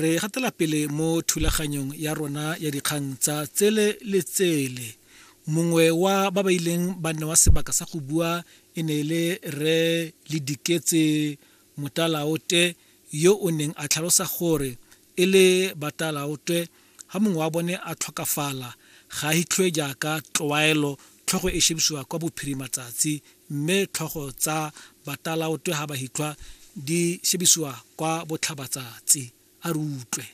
re gatela pele mo thulaganyong ya rona ya dikgang tsa tsele le tsele mongwe wa ba ba ileng ba nne wa sebaka sa go bua e ne e le re le diketse motalaote yo o neng a tlhalosa gore e le batalaotwe Ga mongwe wa bone a tlhokafala, ga a hitlhwe jaaka tlwaelo, tlhogo e shebisiwa kwa bophirima tsatsi, mme tlhogo tsa batalaotwe ga ba hitlhwa di shebisiwa kwa botlhaba tsatsi. A re utlwe.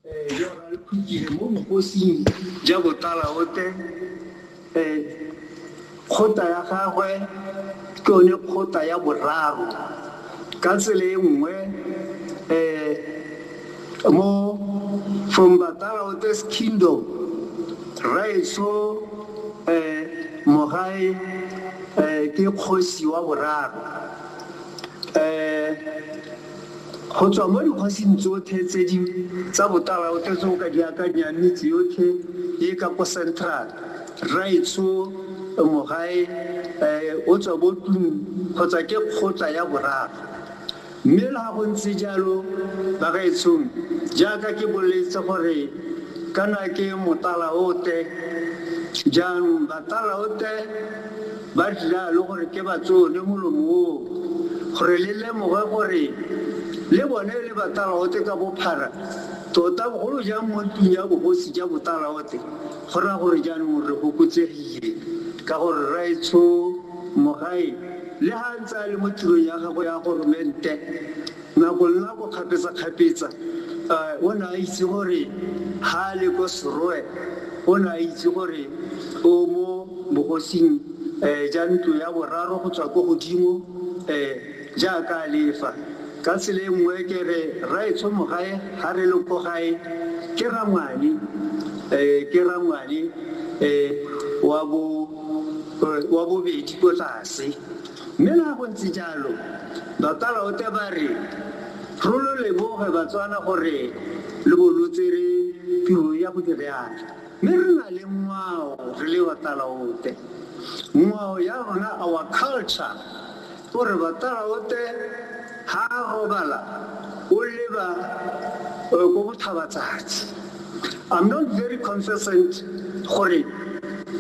Ee, yo ga re khutile mo bokosing jwa botalaote Ee, kgotla ya gagwe ke yone kgotla ya boraro. Ka tsela e nngwe, um mo From Batalaote's Kingdom, Rraetsho um Mogae um ke kgosi wa boraro. Um Go tswa mo dikgosing tsotlhe tse di tsa botalaotlhe tse o ka di akanyang, metse yotlhe e e ka ko Central, Rraetsho, Mogae, eh, o tswa bo Tlung kgotsa ke kgotla ya boraga. Mme le ga go ntse jalo, bagaetshong, jaaka ke boletse gore kana ke motalaote, jaanong batalaote, Ba dira le gore ke ba tsone molomo oo, gore le lemoge gore le bone e le batalaote ka bophara, tota bogolo jang mo ntlung ya bogosi ja botalaote, go raya gore jaanong re gokotsegile, ka gore Rraetsho Mogaeng le ha a ntse a le mo tirong ya gagwe ya goromente, Nako le nako, kgapetsakgapetsa, o ne a itse gore ha a le ko Serowe, o ne a itse gore o mo bogosing ja ntlo ya boraro go tswa ko godimo jaaka a lefa. Ka tsela e nngwe ke re Rraetsho Mogae ha re le ko gae ke rangwane, ke rangwane wa bobedi ko tlase. Mme le ha go ntse jalo, Bakalaote ba re, Ro lo leboge Batswana gore lo bo lo tsere tiro ya go di reaka. Mme re na le ngwao re le Bakalaote. Ngwao ya rona, our culture, o re Bakalaote ha a robala o leba ko bothabatsatsi. I'm not very consistent gore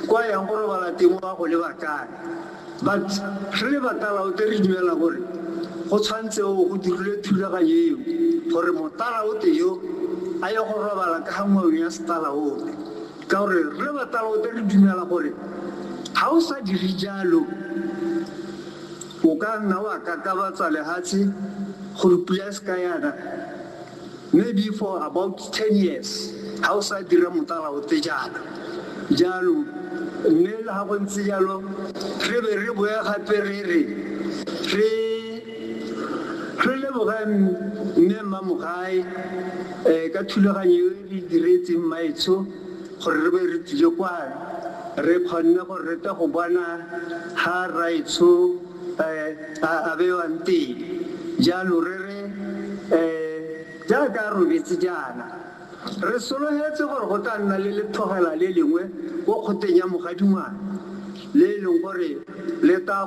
kwa yang go robala teng o a go leba kae. But re le batalaote re dumela gore go tshwantseo go dirilwe thulaganyo eo gore motalaote yo a ye go robala ka ga ngwao ya setalaote ka gore re le batalaote re dumela gore ga o sa dire jalo o ka nna wa kakabatsa lehatshe gore pula e se ka yana Maybe for about ten years ga o sa dira motala o te jaana. Jaanong mme le ga go ntse jalo re be re boe gape re re re re leboge mme mmamogae um ka thulaganyo e re diretseng mmaetsho gore re be re tlile kwa re kgonne gore re tle go bona ga raetsho a a bewang teng jalo re re um jaaka a robetse jaana re sologetse gore go tla nna le letlhogela le lengwe ko kgoteng ya mogadingwana le e leng gore le tla